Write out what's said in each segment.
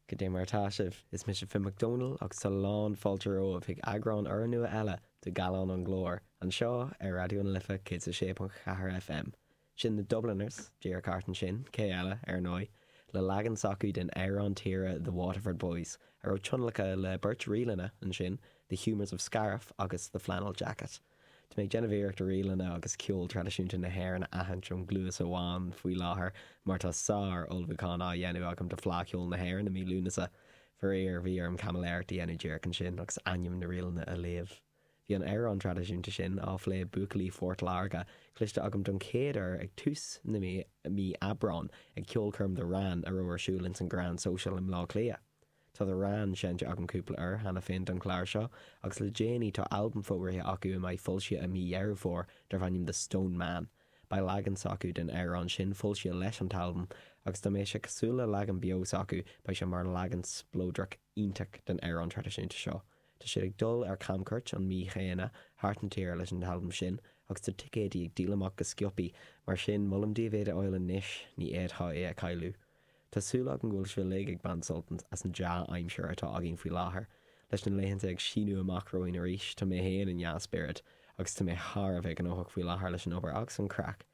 Goidé mar atá sibh! Is mise Finn Mac Domhnaill agus tá a lán fáilte romhaibh chuig eagrán urnua eile de Gallán an Ghlóir, anseo ar Raidió na Life 106.4 FM. Sin The Dubliners, díreach ansin, cé eile, ar ndóigh, le leagan s'acu den amhrán tíre The Waterford Boys, a raibh tionlacan le beirt ríleanna ansin, The Humours of Scariff agus The Flannel Jacket. Tá mé ag déanamh iarracht ríleanna agus ceol traidisiúnta na hÉireann a aithint ón gcluas amháin faoi láthair mar tá sár ullmhúchán á dhéanamh agam do Fleadh Cheoil na hÉireann i mí Lúnasa. Faraor, bhí orm caimiléireacht a dhéanamh díreach ansin agus ainm na ríleanna a léamh. Bhí an amhrán traidisiúnta sin, ag plé buachaillí Phort Láirge, cloiste agam don chéad uair ag tús na mí Aibreán ag ceolchoirm The Wran a raibh ar siúl ins an Grand Social i mBleá Cliath. Tá The Wran seinnte agam cúpla uair cheana féin ar an chlár seo, agus le déanaí tá albam fógraithe acu a mbeidh foilsithe i mí Dheireadh Fómhair darb ainm The Stone Man. Beidh leagan s'acu den amhrán sin foilsithe leis an t-albam, agus dá mbeadh sé cosúil le leagan beo s'acu beidh sé mar leagan spleodrach iontach den amhrán traidisiúnta seo. Tá siad ag dul ar camchuairt an mhí chéanna thart na tíre leis an t-albam sin, agus tá ticéidí ag díol amach go sciopaí, mar sin molaim daoibh iad a fháil anois, ní fhéadfá é a chailleadh. Tá súil agam go bhfuil sibh uilig ag baint sult as an dea-aimsir atá againn faoi láthair. Leis na laethanta ag síniú amach romhainn arís, tá mé fhéin i ndea-spiorad, agus tá mé thar a bheith gnóthach faoi láthair leis an obair agus an craic.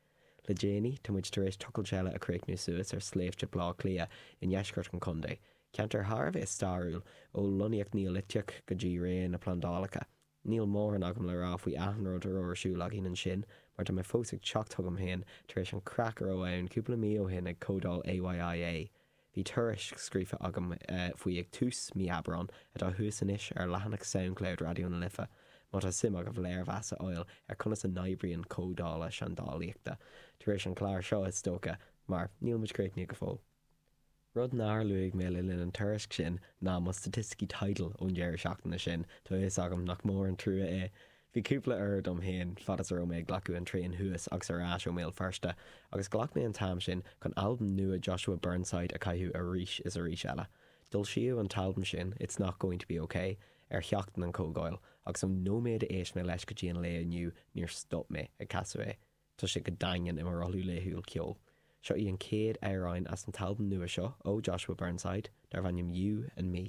Le déanaí, tá muid tar éis tochailt eile a chríochnú suas ar Sléibhte Blá Cliath i ndeisceart an chontae, ceantar thar a bheith stairiúil, ó lonnaíocht Neoliteach go dtí ré na plandálacha. Níl mórán agam le rá faoi achan rud a raibh ar siúl againn ansin mar tá mé fós ag teacht chugam féin tar éis an craic a raibh ann cúpla mí ó shin ag Comhdháil AYIA. Bhí tuairisc scríofa agam faoi ag tús mí Aibreán atá thuas anois ar leathanach Soundcloud Raidió na Life má tá suim agaibh léirmheas a fháil ar conas a n-oibríonn comhdhála seandálaíochta, tar éis an clár seo is dócha mar níl muid críochnaithe go fóill. Rud nár luaigh mé le linn an tuairisc sin ná mo staitisticí Tidal ón deireadh seachtaine sin, tá fhios agam nach mór an trua é. Bhí cúpla uair dom féin, fad is a raibh mé ag glacadh an traein thuas agus ar ais ó mBéal Feirste, agus ghlac mé an t-am sin chun albam nua Joshua Burnside a chaitheamh arís is arís eile. D'fhoilsíodh an t-albam sin, It's Not Going To Be Ok, ar sheachtain an chomhdháil, agus ón nóiméad a éist mé leis go dtí an lá inniu, níor stop mé ag casadh é. Tá sé go daingean i mo rothlú laethúil ceoil. Seo í an chéad amhrán as an t-albam nua seo ó Joshua Burnside, darb ainm You and Me.